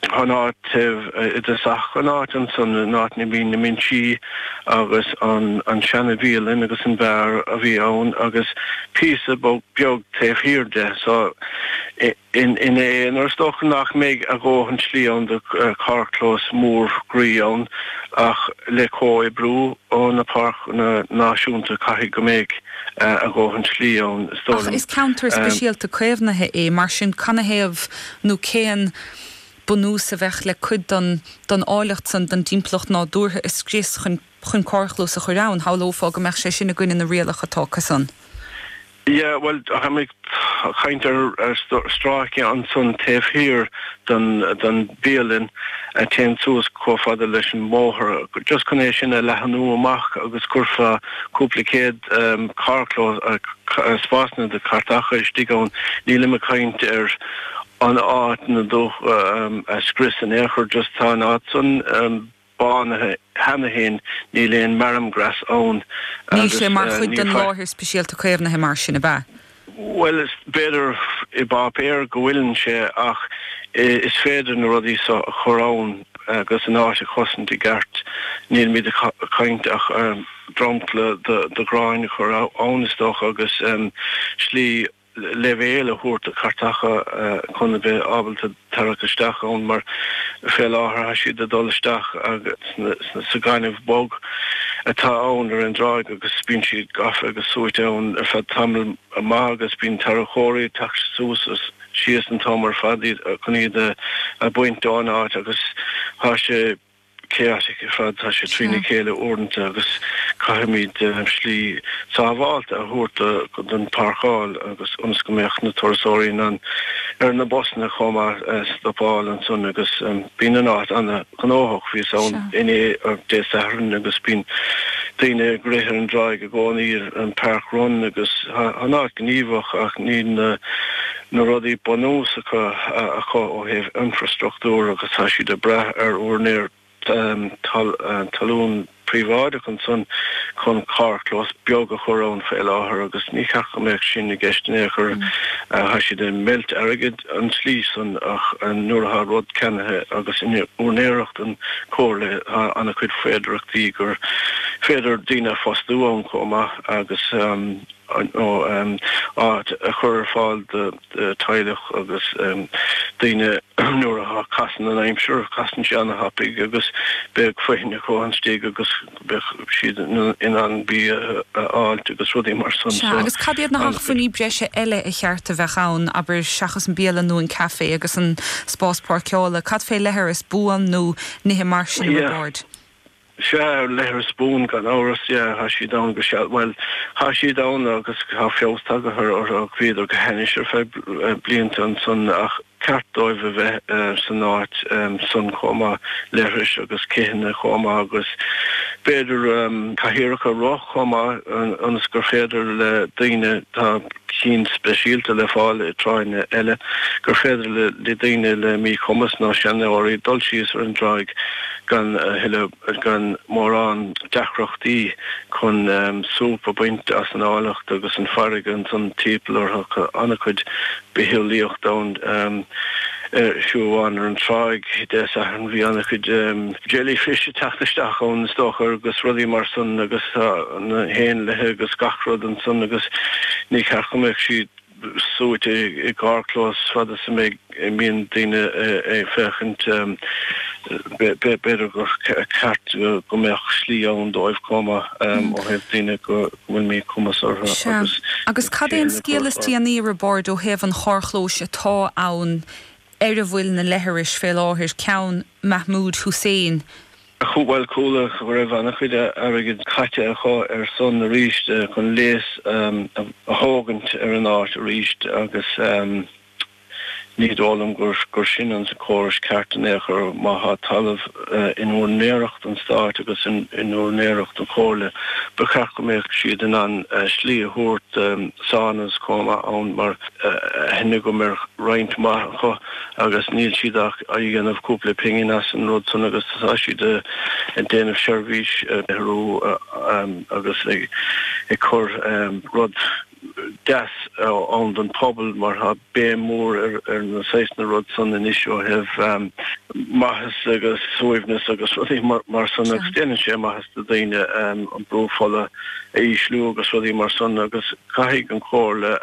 Tá an áit thíos i dtosach an áit annsan, an áit ina mbíonn na binsí agus an an seana bhialann agus an beár a bhí ann agus píosa beag taobh thiar de so in in é nuair is dócha nach mbeidh a dhóthain slí ann do carrchlós mór groí ann ach le comhoibriú ó na páirceanna náisiúnta caithfidh go mbeidh a dhóthain slí ann is dóigh liom. Ach is ceantar speisialta caomhnaithe é mar sin canathaobh nó cén bunús a bheadh le cuid den, den áilleacht san den dtimpeallacht nádúrtha a scrios chun, chun carrchlós a chur ann? Shamhlófá go mbeadh sé sin i gcoinne na rialach atá acu san. Yeah, bhuel, táimid ag caint ar, ar stráice ansan taobh thiar den, den bhialann a théann suas chomh fada leis an mbóthar, just chun é sin a leathanú amach agus chuirfeá cúpla céad, carrchlós, spásanna do chairteacha istigh ann, nílim ag caint ar an áit ar ndóigh a scrios in aon chor, just tá an áit san bánaithe cheana féin, níl aon marram grass ann. Níl sé mar chuid den Láthair Speisialta Caomhnaithe mar sin, ab ea? Bhuel, b'fhéidir ar páipéar go bhfuileann sé ach is féidir na rudaí so a chur ann agus an áit a chosaint i gceart. Nílimid ag caint ach dromchla de ghrean a chur ann is dócha agus slí leibhéil a thabhairt do chairteacha chun a bheith ábalta, tarrac isteach ann mar fé láthair tá siad ag dul isteach sa gaineamh bog atá ann ar an dtráigh agus bíonn siad gafa agus suaite ann ar feadh tamaill maith agus bíonn tarracóirí ag teacht suas is síos an t-am ar fad chun iad a bhaint ón áit agus tá sé chaotic ar fad. Tá sé trína chéile uaireanta agus caithfimíd slí sábhálta a thabhairt don pháirceáil agus ionas go mbeadh na turasóirí ar na busanna chomh maith stopáil ansan agus bíonn an áit ana-ghnóthach. Bhíos ann inné, Dé Sathairn, agus bíonn daoine ag rith ar an dtráigh i gcónaí ar an Park Run agus tá an áit gníomhach ach níl na. na rudaí bunúsacha acu ó thaobh infreastruchtúr agus tá siad ag brath ar úinéir talún príobháideach ansan chun carrchlós beag a chur ann faoi láthair agus ní cheart go mbeadh sin i gceist in aon chor. Tá siad ag baint airgid an tslí san ach nuair atá rud ceannaithe agus in úinéireacht an Chomhairle tá an-chuid féidearthachtaí gur féidir daoine a phostú ann chomh maith agus nó áit a chur ar fáil do theaghlach agus daoine nuair a chasann an aimsir, casann sé an-thapaidh agus beidh foithin acu ann istigh agus beidh siad in ann bia a fháilt agus rudaí mar san Sea, so agus cad iad na hacmhainní breise eile a cheart a bheith ann, abair, seachas an bialann nó an café agus an spás páirceála, cad fé leithris buan nó nithe mar sin a Roibeaird? Sea, leithreas buan gan amhras, yeah, thá siad ann go, sea, bhuel, thá siad ann agus thá feabhas tagaithe ortha, bhíodar go hainnis ar feadh blianta ansan ach ba cheart dóibh a bheith san áit san chomh maith, leithris agus citheanna chomh maith agus b'fhéidir cathaoireacha rotha chomh maith ionas gur féidir le daoine, tá cinn speisialta le fáil i dtráigheanna eile, gur féidir le daoine le mí-chumas nó seanóirí dul síos ar an dtráigh. gan a thuilleadh, gan mórán deacrachtaí chun súp a bhaint as an áilleacht agus an fairrge annsan tímpeall ortha tá ana-chuid bitheolaíocht ann ar siúlóid amháin ar an tráigh Dé Sathairn bhí ana-chuid jellyfish ag teacht isteach ón Astóir is dócha agus rudaí mar san agus tá na héanlaithe agus gach rud annsan agus ní ceart go mbeadh siad suite i gcarrchlós fad is a mbeidh, a mbíonn daoine ag féachaint. B'fhéidir gur ceart go mbeadh slí ann dóibh chomh maith ó thaobh daoine go bhfuil míchumas orthu agus Agus cad é an scéal is déanaí Roibeárd ó thaobh an charrchlóis atá ann ar a bhfuil na leithris fé láthair ceann Mahmoud Hussein Bhuel, chuala go raibh an-chuid airgid caite acu ar san arís chun léas a thógaint ar an áit arís agus ní dóigh liom gur sin an córas ceart in aon chor. Má thá talamh in úinéireacht an Stáit agus in úinéireacht an Chomhairle ba cheart go mbeadh siad in ann slí a thabhairt do saunas chomh maith ann mar tá aithne agam ar roinnt mhaith acu. agus níl siad ach a' dhéanamh cúpla pingin as an rud san agus tá siad a' déanamh seirbhís, arú, agus ag cur rud deas ann don phobal mar tá béim mór ar an saghas sin rud san anois ó thaobh maitheas agus suaimhneas agus rudaí mar san agus déanann sé maitheas do daoine an brú fola a ísliú agus rudaí mar san agus caithfidh an Comhairle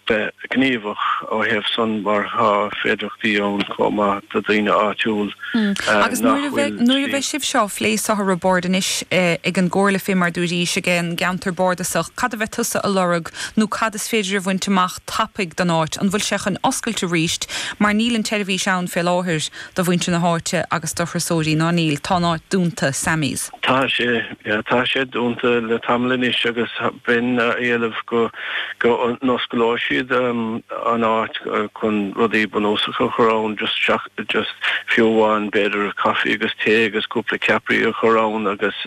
bheith gníomhach ó thaobh san mar tá féidireachtaí ann comh maith do dhaoine áitiúl Agus nuair a bheidh, nuair a bheidh sibh seo á phlé is é os comhair Boird anois ag an gComhairle fé mar dúirís ag an gceantar bárdasach, cad a bheidh tusa a lorg nó cad is féidir a bhaint amach tapaidh don áit, an bhfuil sé chun oscailt arís mar níl an tseirbhís ann fé láthair do mhuintir na háite agus do thurasóirí, ná níl, tá an áit dúnta, Sammy's. Tá sé, yeah, tá sé dúnta le tamall anois agus bheinn ag éileamh go, go n-osclóidh siad an áit chun rudaí bunúsacha a chur ann, just seach, just fiú amháin b'fhéidir coffee agus tae agus cúpla ceapairí a chur ann agus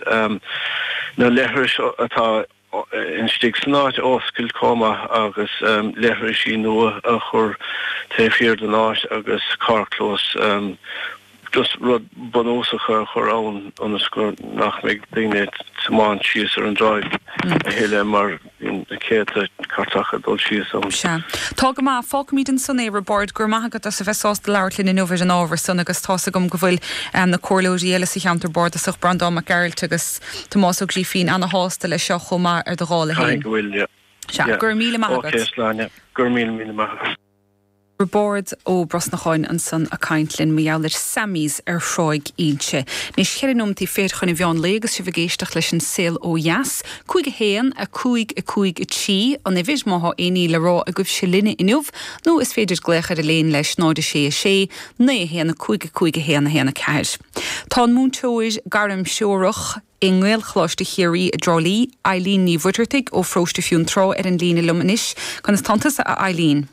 na leithris atá. istigh san áit a oscailt chomh maith agus leithrisí nua a chur taobh thiar den áit agus carrclós just rud bunúsach a chur ann ionas go nach mbeidh daoine ag tiomáint síos ar an dtráigh a thuilleadh mar bíonn na céadta cairteacha ag dul síos ann. Sea. Tá go maith. Fágfaimíd ansan é, Roibeárd. Go raibh maith agat as a bheith sásta labhairt linn inniu ar an ábhar san agus tá's agam go bhfuil na comhairleoirí eile sa Cheantar Bárdasach, Breandán Mac Gearailt agus. Tomás Ó Grífín, ana-shásta le seo chomh maith ar do dhála Caithfidh fhéin. go bhfuil, yeah. Sea, go Yeah. raibh míle maith agat. Okay, a Shláine. Go raibh míle míle maith agat. Roibeárd Ó Brosnacháin ansan a' caint linn mar gheall ar Sammy's ar Thráigh Ínse. Anois cheithre nóimintí fichead chun a' mheáin lae agus sibh ag éisteacht leis an Saol Ó Dheas. Cúig a haon, a cúig, a cúig a trí, an uimhir, má thá aon ní le rá agaibhse linne inniu, nó is féidir glaoch ar Elaine leis, 0 6 6, 9 1 5 5 1 1 4. Tá an múinteoir gairmthreorach i nGaelcholáiste Chiarraí i dTrá Lí, Eilín Ní Mhuireartaigh ó Pharóiste Fionntrá ar an líne liom anois. Conas tánn tusa a Eilín?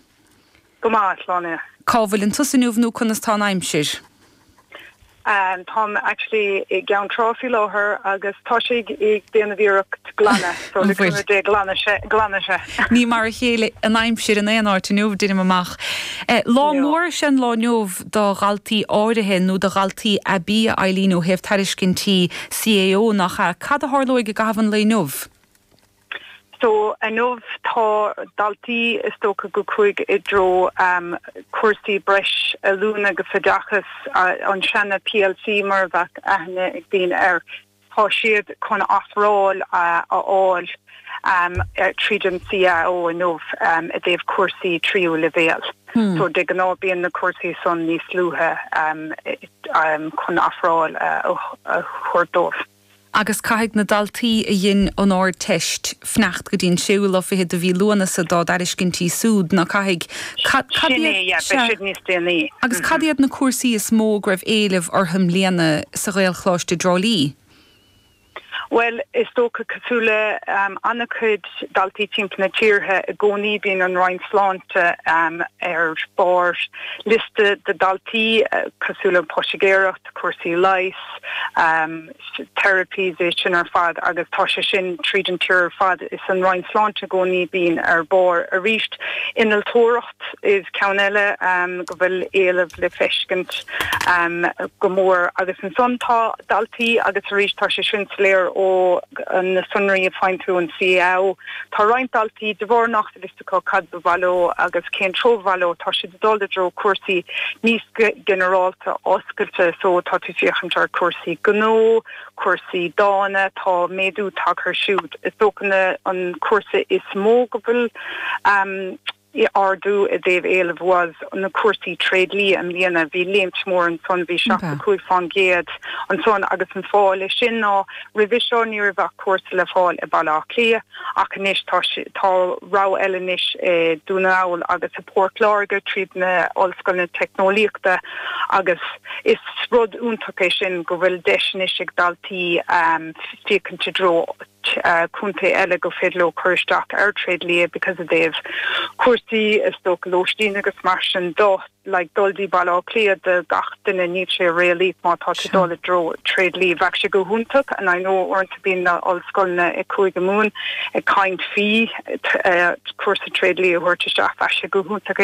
Go maith, a Shláine. Cá bhfuileann tusa inniu nó conas tá an aimsir? Táim actually i gCeann Trá faoi láthair agus tá sé ag déanamh iarracht ar ghlanadh so le cúnamh Dé glanfaidh sé, glanfaidh sé. Ní mar a chéile an aimsir in aon áit inniu deinim amach. Lá mór is ea an lá inniu. do dhaltaí áirithe nó do dhaltaí aibí a Eilín ó thaobh tairiscintí CAO, nach ea? Cad a tharlóidh i gcaitheamh an lae inniu? So inniu tá daltaí is dócha go chuaigh i dtreo cúrsaí breis oiliúna agus oideachas an seana-PLC mar a bheadh aithne ag daoine air. Tá siad chun ofráil a fháil tríd an CAO inniu i dtaobh cúrsaí tríú leibhéal. So de gnáth bíonn na cúrsaí san níos luaithe chun ofráil a thabhairt dóibh. Agus caithfidh na daltaí a dhein an Ardteist fanacht go dtí an séú lá fichead de mhí Lúnasa dá dtairiscintí súd, ná caithfidh. Cad, cad Sin é, iad, yeah, beidh sea, siad níos déanaí. agus cad iad na cúrsaí is mó go raibh éileamh orthu i mbliana sa Ghaelcholáiste i dTrá Lí? Bhuel, is dócha cosúil le, ehm, an-chuid daltaí timpeall na tíortha i gcónaí bíonn an Roinn Sláinte, ehm, ar barr liosta do dhaltaí, eh, cosúil le poitigéireacht, cúrsaí leighis, ehm, therapies é sin ar fad agus tá sé sin tríd an tír ar fad. Is an Roinn Sláinte i gcónaí a bíonn ar bharr arís. Innealtóireacht is ceann eile go bhfuil éileamh le feiscint go mór agus ansan tá daltaí agus arís tá sé sin soiléir ó na sonraí a fhaigheann tú ón CAO. Tá roinnt daltaí de bharr nach acu cad ba mhaith leo agus cén treo ba mhaith leo, tá siad ag dul i dtreo cúrsaí níos ginearálta, oscailte so tá tú ag féachaint ar chúrsaí gnó, cúrsaí dána, tá méadú tagtha ar siúd. Is dócha na an cúrsa is mó go bhfuil ardú i dtaobh éilimh ná na cúrsaí tréidlia i mbliana, bhí léimt mór ansan, bhí 65 fán gcéad ansan agus an fáth le sin ná roimhe seo ní raibh ach cúrsa le fáil i Baile Átha Cliath, Ach anois tá tá rogha eile anois i Dún na nGall agus i bPort Láirge tríd na h-ollscoileanna teicneolaíochta agus is rud iontach é sin go bhfuil deis anois ag daltaí féachaint i dtreo contae eile gur féidir leo cur isteach ar tréadlia because ó thaobh cúrsaí is dócha lóistín agus mar sin de. like, dul dtí Baile Átha Cliath do gach duine níl sé réalaíoch má tá tú dul i dtreo tréidlia. Bheadh sé go hiontach and I know uaireanta bíonn na ollscoileanna i gCúige Mumhan ag caint faoi cúrsa tréidlia a thabhairt isteach. Bheadh sé go hiontach.